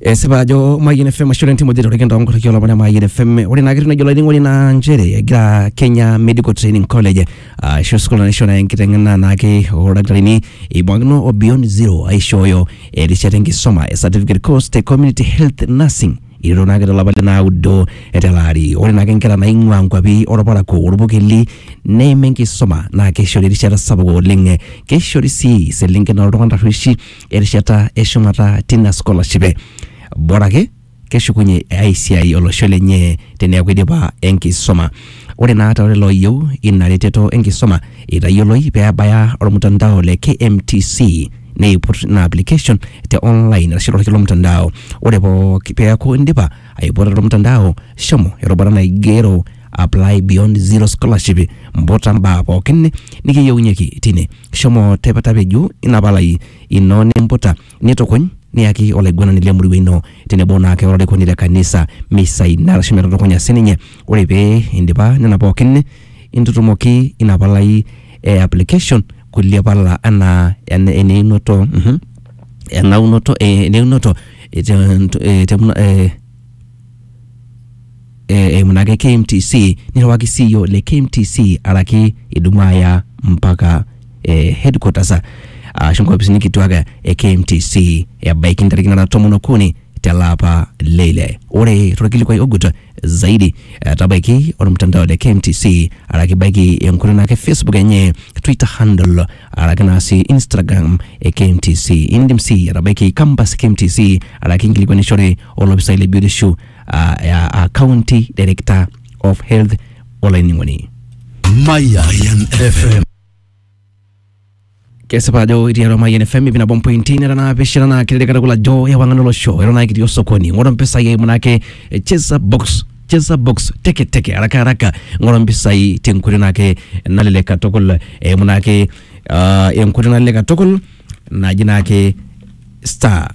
esipa ajo Mayian FM ashu lentim oje torrekin too nkorriki olopon e Mayian FM ore naa ketii najo olainining'oni naa nchere egira Kenya Medical Training College ashu sukuul naisho naa enkiteng'ena naake oldakitarini eibung'akino o Beyond Zero aishooyo erishata enkisoma e certificate course te community health nursing ilo naake tolapa le naudo tele ari ore naake inkera naing'ua nkuapi orparakuo orpukeli neim enkisuma naa keishori erishata sapuk oleng keishori sii iselenken oltung'ana tarrueshi erishata eshumata tina scholarship e bora ake keshukunye ai siai olosho lenye teneeku idipa enkisuma ore naa too lelo ooyieu ina reteto enkisuma itayioloi pee ebaya ormutandao le KMTC neiput ina application te online arashu torkilo mtandao ore pooki peeku indipa Aiputa tolmtandao, shomo erubata naigero Apply Beyond Zero Scholarship, mputa mbaa pookin nikiyieunyieki tine. Shomo tep- tapeju ina palai ino nimputa, nitukuny niyaki olaiguanani le murua ino tenebo naake olarikoni le kanisa misaina arashu metutukunya sininye. Ore pee indipa nena pookin, intutumoki ina palai e application kulie pala anaa ene- eneunoto mhm, enaunoto eh, eneunoto eh, te- nto- eh, te- mna- eh, eh, eimu naake KMTC nirriwaki CEO le KMTC araki idumu aya mpaka eh, headquarters ashu nkopisini kituak e KMTC ebaiki ntarikini nara tomon okuni tele apa le ile. Ore torkilikuai ogut zaidi etabaiki ormtandao le KMTC araki baiki enkutuk naake Facebook enye, Twitter handle araki naa sii Instagram e KMTC. Indim sii atabaiki campus e KMTC araki inkilikuanishore olopisai le biotisho aa aa county director of health olainining'oni. Mayan FM. kesipa ajo itii atua Mayian FM ip nabo mpointi nera naapishana naa kelelek katukul ajo ewang'an olosho eton naa kitii osokoni ng'oru mpisai eimu naake eh, cheza box cheza box teke teke haraka haraka ng'oru mpisai tenkoitoi naake nalelek katukul eimu naake ah, enkoitoi nalelek katukul naji naake star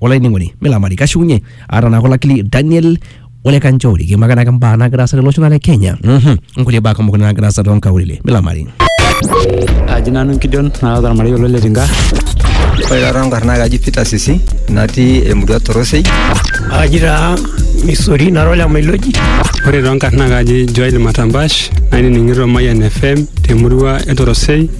olainining'oni milamari kashiunye aata naa kolakili daniel ole kanchori kiimaka naake mbaa naagira aasa tolosho naa le kenya Mhm. nkulie baa kumok naagira aasa toonkaulele milamari aji nanu enkidion naata ormarei olo letinka Ore taata nkarn naa kaji Peter Sisi natii emurua Torosei. aji taa misori nara ole mailoji ore toonkarn naa kaji joel matambash nainining'ito mayian fm temurua e torosei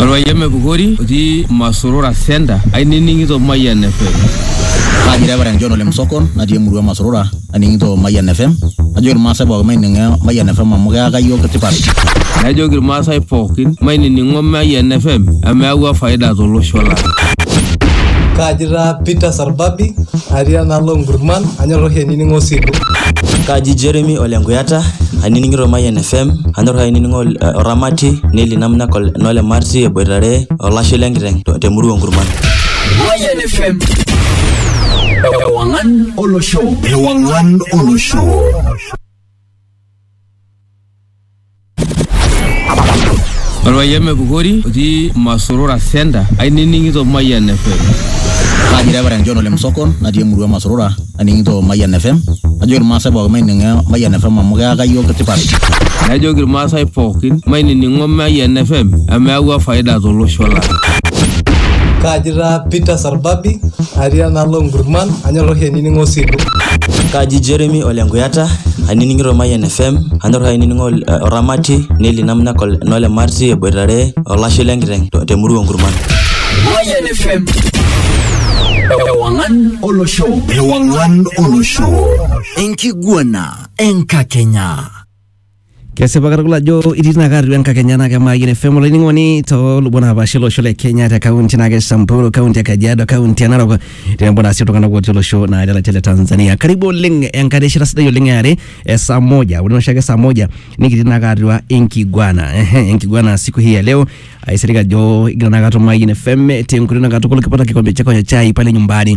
Orpayian Pukori otii Masurura Center ainining'ito Mayian FM. Kaji Reverend John Ole Msokon natii emurua Masurura aning'ito Mayian FM najoki irmaasai pookin maining'o Mayian FM amu keyaka iyiook tipat. Najoki irmaasai pookin mainining'o Mayian FM amu eyawua faida tolosho lang. Kaaji taa Peter Sarbabi atii enaalo Nkurman anyor oshi ainining'o Silu. Kaaji Jeremy Ole Nkuyata ainining'ito Mayian FM anyor ainining'o Oramati Neli Namna Nole Marti eboitare olashe lenkiteng' temurua Nkurman. Mayian FM. Ewangan olosho ewang'an olosho Orpayian Mepukori otii Masurura Center ainining'ito Mayian FM. Kaji Reverend John Ole Msokon natii emurua Masurura aning'ito Mayian FM. Najoki irmaasai pookin maining'o Mayian FM amu keyaka iyiook tipat. Najoki irmaasai pookin mainining'o Mayian FM amu eyawua faida tolosho lang. Kaji taa Peter orbabi atii enaalo nkurman anyor oshi ainining'o osilu Kaji Jeremy ole Nkuyata, ainining'ito Mayian FM, anyor ainining'o eh, Oramati, Neli Namnyak ol- nole Marti eboitare olashe lenkiteng to- temurua Nkurman. Mayan FM. Ewangan Olosho. Ewangan Olosho. Enkiguana Enkakenya. Kesipa katukul ajo itii tinaka atua enkakenya naa kemaayie ne FM olainining'oni toolubot naapaasha olosho le Kenya te kaunti naake Samburu, kaunti e Kajiado, kaunti e Narok tenebo naa sii iltung'anak otii olosho naa le latia le Tanzania. Karibu oleng enkae rishata sidai oleng e are e saa moja. Ore oshiake saa moja nikitii naake atua enkiguana. Ehe, enkiguana siku hii ya leo aisilig ajo igira naake atum Mayian FM tenkoitoi naa katukul kipata kikombe chako cha chai pale nyumbani.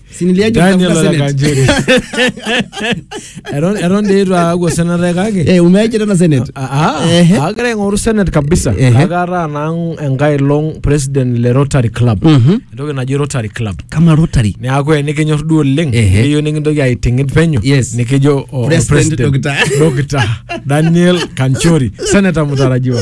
Si niliaje Daniel kutafuta Senate? Olakanjeri. Eton eton dii itu aaku osenate kake. Eh, umeaje tena Senate? Ah, ah, Ehe. agira aing'oru senate kabisa Ehe. kake ataa naa enkae long president le Rotary Club Mhm. entoki naji Rotary Club Kama Rotary. neaku enikinyor duo oleng Ehe. nikiyieu nikintoki aiting'it penyo Yes. nikijo o- o President president Dr. Dr. Daniel Kanchori seneta mtarajiwa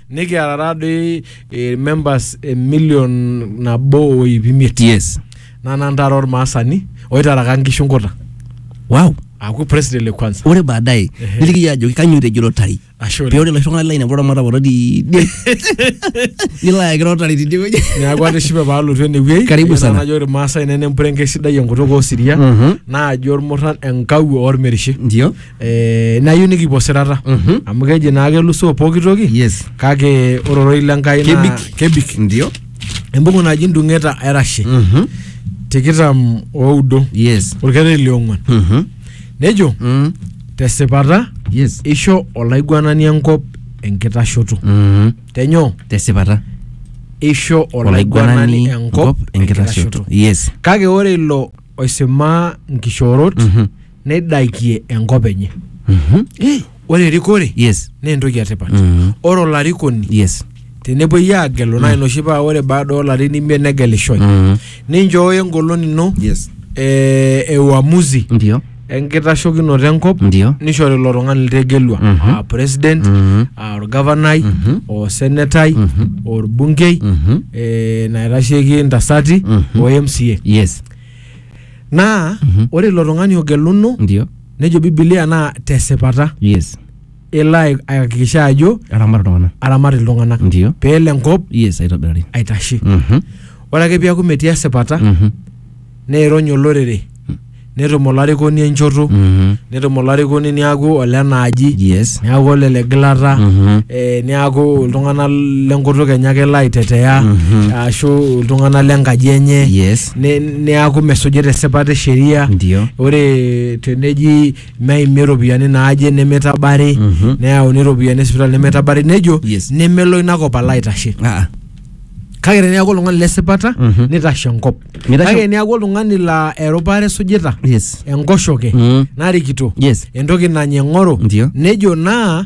nikiata taadoi eh, members eh, million nabo o iip imiet yes naa nantara ormaasani oitaraka nkishu nkuta wow aaku president le kwanza ore baadaye Ehe. niliki yie ajoki kanyioo etejo lotari Ashe oleng. pee ore laishung'ani laine kulo ramata kulo tidie nilo ayaki lotari tidie wueji neeku atishipe paalotu enewuei Karibu Eyiolo sana. najo irmaasai nene empurenke sidai enkutuk osiria Mhm. naajo ormurran enkawuo ormerishe ndio eh, nayieu nikipuo sirata Mhm. amu keji naa kelusoo pooki toki Yes. kake ore ororei le Nkai naa Kebik. kebik Ndio. embuku naji ndung'eta erashe Mhm. tikitam oudo Yes. orkereri liong'uan Mhm. nejo Mm. tesipata Yes. isho olaiguanani enkop enkitashoto Mhm. tenyoo Tesipata. isho olaiguanani enkop enkitashoto Yes. kake ore ilo oisimaa nkishoorot Mhm. neidakie enkop enye Mhm. Eh, ore erikore yes naa entoki etipat Mhm. ore olarikoni yes tenepuoi aagelu naa inoshi paa ore baada oolarin imiet negelishoi Mhm. ninchooyo engolon ino yes eh, e uamuzi ndio enkitashokinoto enkop ndio nishori ilo tung'ani litegelua Mhm. aa president Mhm. aa orgavanai Mhm. osenetai Mhm. orbungei Mhm. eh, naitasheki ntasati Mhm. o mca yes naa Mhm. ore ilo tung'ani ogeluno ndio nejo bibilia naa tesipata yes elo ai- aihakikisha ajo aramat iltung'anak aramat iltung'anak ndio peelo enkop yes aitobirari aitashe Mhm. ore ake piaku metii esipata Mhm. neirony olorere netum olarikoni enchoto Mhm. netum olarikoni niaku olenaaji yes niaku olele gilata Mhm. eh, niaku iltung'anak lenkutuk enye ake elo aitetea Mhm. ashu iltung'anak lenkaji enye yes ne- neaku mesujita esipata e sheria Ndio. ore teneji meimi iropiyiani naaje nemeitabari Mhm. neyauni iropiyiani esipitali nemeitabari nejo Yes. nemelo ina kop alo aitashe Ah, kake teneaku oltung'ani lesipata Mhm. nitashe enkop Mitashe- kake teneaku oltung'ani laa erupare esujita yes enkoshoke Mm. narikito Yes. entoki nanya eng'oro Ndio. nejo naa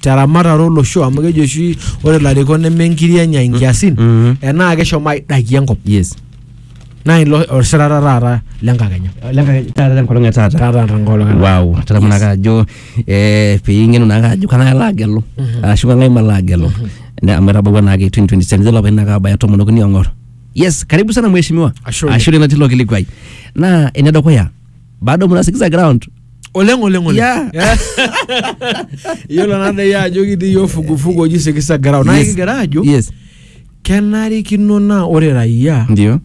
teramatare olosho amu keji oshi ore ilarikok neme nkiri enya inkiasin Mhm. enaa keshomo aidakie enkop yes naa ilo osirata taata lenkakenya taata tenkolong e taata taata tenkolong e taata. wow tadamu naake ajo eh, piing'enu naake ajo kang'ae alo agelu ashu kang'ae malo agelu Ne- amu etabawua naake 2027 nelo apa inaka abaya tomon okuni ong'or yes karibu sana mheshimiwa Ashe oleng. ashu lelo tilo kilikuai naa enedukuya bado mnasikiza ground oleng oleng oleng Yeah. Yeah. iyiolo naa dai ajo kitii yiok fugufugu oji sikisa garao naa Yes. kigira ajo yes kenarikino naa ore raia ndio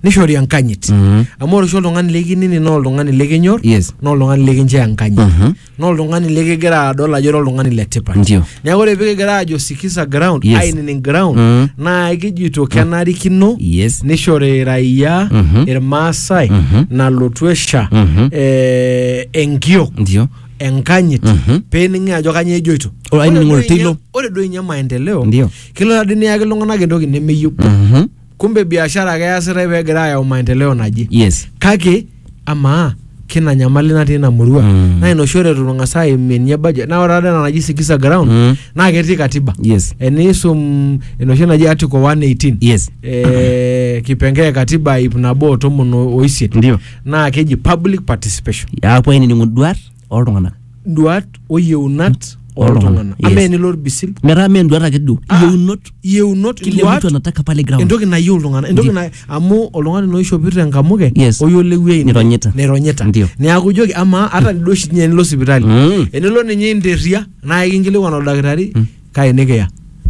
nishori enkanyit Mhm. amu ore oshi oltung'ani likinini naa oltung'ani likinyor Yes. naa oltung'ani likinchoo enkanyit Mhm. naa oltung'ani likigira adol ajo ira oltung'ani le tipat Ndio. neeku ore pikigira aajo sikiza ground Yes. ainining ground Mm. naa kijito kenarikino Yes. nishori raia Mhm. irmaasai Mhm. nalotu esha Mhm. eh, enkiok ndio enkanyit Mhm. pening'i ajo kanyoo ejoito Ore ainining'o Ore duo oltoilo. inye- ore duo inye maendeleo Ndio. kelo tadi niyaki iltung'anak entoki nemeyieu Mhm. kumbe biashara ake easitae pee egira ayau maendeleo naje yes kake amaa kina nyamali natii ina murua Mm. naa ina oshi ore itu tung'as aimie ninye budget naa ore taata ena naji sikiza ground Mm. naa ketii katiba yes eniisum enoshi naji article 118 yes eh, kipengee e katiba ip nabo o tomon o- oisiet ndio naa keji public participation apuo ainining'u duat oltung'anak duat o yieunat oltung'anak Yes. ama enilo orbisil metaa mee enduata ake duo Ah. iyieunot yieunot kile mtu duat anataka pale ground entoki nayieu iltung'anak entoki Ndi- na amu oltung'ani naa oishopito enkamuke Yes. oyiolewuei Nironyita. nironyita Ndio. neeku ijoki amaa ata duo oshi ninye enilo sipitali Mm. enilo ninye interria naa ikinkilikuan oldakitari kake nikiya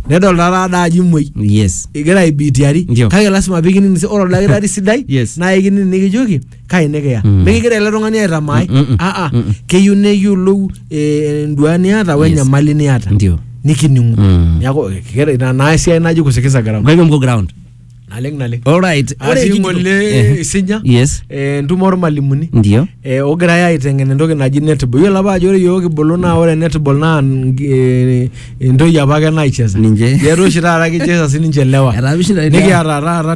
nedol taata ada ajo imuoi yes igira aibitiari Ndio. kake lasima pikining si- ore oldakitari sidai Yes. naa ikining nikijoki kai nikiya Mm. mikigira ele tung'ani aitamaai Mm, mm, mm. aa Mm, mm. keyieu neyiolou eh, enduaa niata we Yes. enyamali niata ndio nikining'u Mm. neaku kira- ina naa esiai naji kusikiza garamu kake mko ground naleng naleng Alright. Ore atii kijito- ng'ole Eh, isinya Yes. eh, entumo ormalimuni Ndio. eh, ogirai aiteng'en entoki naji netball iyiolo apa ajo ore iyiook kibulu naa ore netball naa ngi- eh, entoki apake naicheza Ninche. Yetu oshi taata kicheza sininche lewa Etaa mishinda- nikiata taata